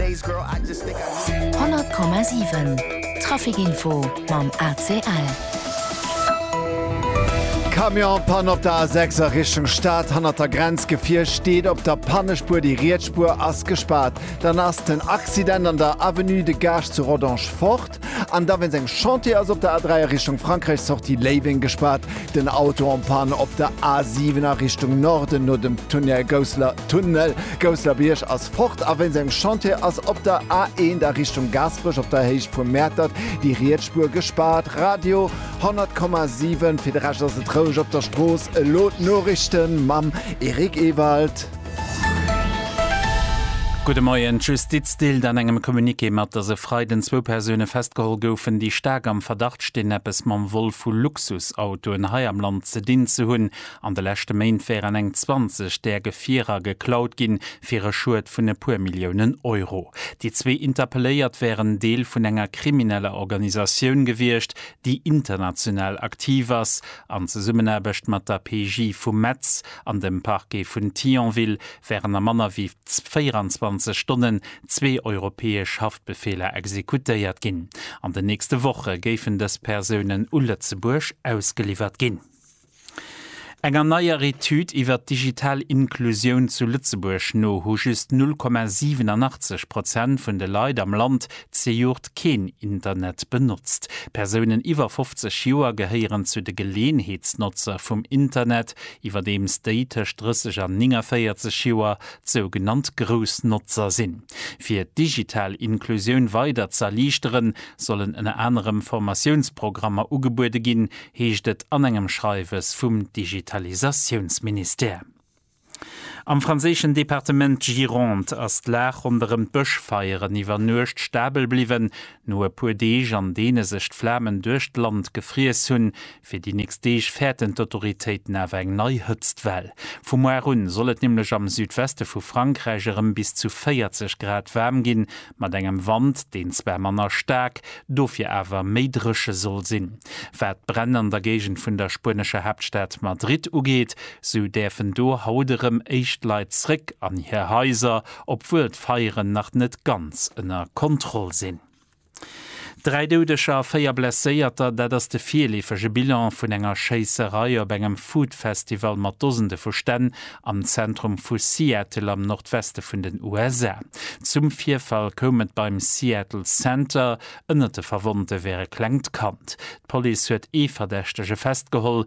100,7 Trafikinfo mam ACL. Camionspann op der A6 a Richtung Stad hannert der Grenz, Gefier steet op der Pannespuer, déi riets Spuer ass gespaart. Dann ass den Accident an der Avenue de Gaasch zu Rodange fort. Stad. An da wéinst engem Chantier ass op der A3 a Richtung Frankräich Sortie Léiweng gespaart, den Auto en Panne op der A7 a Richtung Norden no dem Tunnel Gousseler Tunnel Gousselerbiërg ass fort a wéinst engem Chantier ass op der A1 a Richtung Gaasperech op der Héicht vu Mäertert déi riets Spuer gespaart. Radio 100,7 Fir de Rescht ass et roueg op der Strooss. Elo d'Noriichten mam Eric Ewald. Gudde Moien. D'Justiz deelt an engem Communiqué mat, datt e Freiden zwou Persoune festgeholl goufen, déi staark am Verdacht stinn, eppes mam Vol vu Luxusautoen hei am Land ze dinn ze hunn. An de leschte Méint wären eng 20 där Gefierer geklaut ginn, fir e Schued vun e puer Milliounen Euro. Déi zwee Interpelléiert wären Deel vun enger krimineller Organisatioun gewiescht, déi international aktiv ass, an Zesummenaarbecht mat der PJ vu Metz An dem Parquet vun Thionville wären a manner wéi 24 Stonnen zwee europäesch Haftbefeeler exekutéiert ginn. An den nächste Woche géifen dës Persounen u Lëtzebuerg ausgeliwwert ginn. Enger neier Etüd iwwert d'digital Inklusioun zu Lëtzebuerg no hu just 0,87 Prozent vun de Leit am Land Zejoert keen Internet benotzt. Persounen iwwer 50 Joer gehéieren zu de Geleeënheetsnotzer vum Internet, iwwerdeems déi tëscht 30 an 49 Joer d'sougenannt Groussnotzer sinn. Fir d'digital Inklusioun weider z'erliichteren, sollen ënner anerem Formatiounsprogrammer ugebuede ginn, heescht et an engem Schreiwes vum Digitalisatiounsministère. Am franséischen Departement Gironde ass d'Lag ronderëm d'Bëschfeieren iwwer Nuecht stabel bliwwen. No e puer Deeg, an deene sech d'Flamen duerch d'Land gefriess hunn, fir déi nächst Deeg fäerten d'Autoritéiten awer eng nei Hëtztwell. Vu muar un soll et nämlech am Südweste vu Frankräich erëm bis zu 40 Grad waarm ginn. mat engem Wand, deen zwar manner staark, dofir awer méi dréche soll sinn. Wat d'Bränn an der Géigend vun der spuenescher Haaptstad Madrid ugeet, sou däerfen do haut erëm éischt Leit zréck an hir Haiser, obwuel d'Feieren nach net ganz ënner Kontroll sinn. Dräi Doudeger a véier Blesséierter, dat ass de virleefege Bilan vun enger Schéisserei op engem Food-Festival mat Dosende vu Stänn am Zentrum vu Seattle am Nordweste vun den USA. Zum Virfall koum et beim Seattle Center. Ënnert de Verwonnte wär e klengt Kand. D'Police huet ee Verdächtege festgeholl.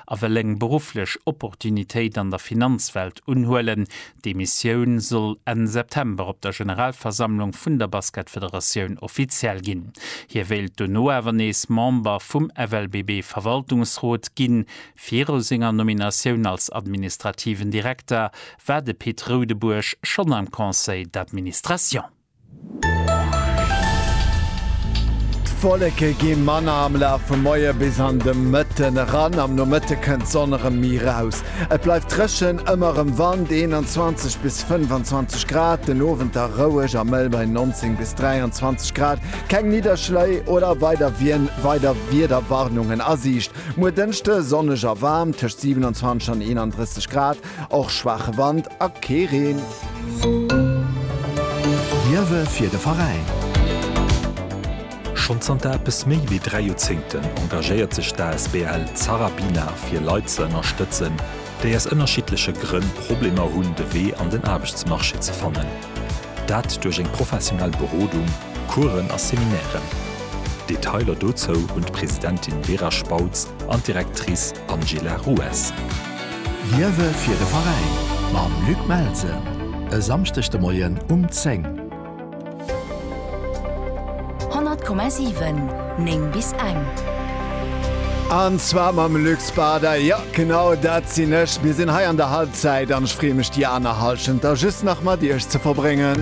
a wëll eng berufflech Opportunitéit an der Finanzwelt unhuelen. D'Demissioun soll Enn September op der Generalversammlung vun der Basketfederatioun offiziell ginn. Hie wéilt dono awer nees Member vum FLBB-Verwaltungsrot ginn. Viru senger Nominatioun als administrativen Direkter war de Pit Roudebuerg schonn am Conseil d'administration. D'Wolleke gi manner am Laf vum Moie bis an de Mëtten eran. Am Nomëtte kënnt d'Sonn erëm méi raus. Et bleift dréchen, ëmmer erëm Wand, 21 bis 25 Grad, den Owend da roueg a mëll bei 19 bis 23 Grad. Keng Nidderschléi oder weider Wiederwarnungen a Siicht. Muer Dënschde sonneg a waarm, tëscht 27 an 31 Grad. Och schwaache Wand a kee Reen. Wierwe fir de Veräin. Schonn zanter eppes méi wéi dräi Joerzéngten engagéiert sech d'asbl Zarabina fir Leit ze ënnerstëtzen, déi aus ënnerschiddleche Grënn Problemer hunn de Wee an den Aarbechtsmarché ze fannen. Dat duerch eng professionell Berodung, Coursen a Seminairen. Detailer dozou hunn d'Presidentin Vera Spautz an d'Directrice Angela Rues. Liewe fir de Veräin mam Luc Melsen e Samschdeg de Moien um 10. 100,7, 9 bis eng. An zwar mam Luc Spada. Jo, genau dat sinn ech. Mir sinn hei an der Halbzeit an ech freeë mech déi aner Hallschent da just nach mat iech ze verbréngen.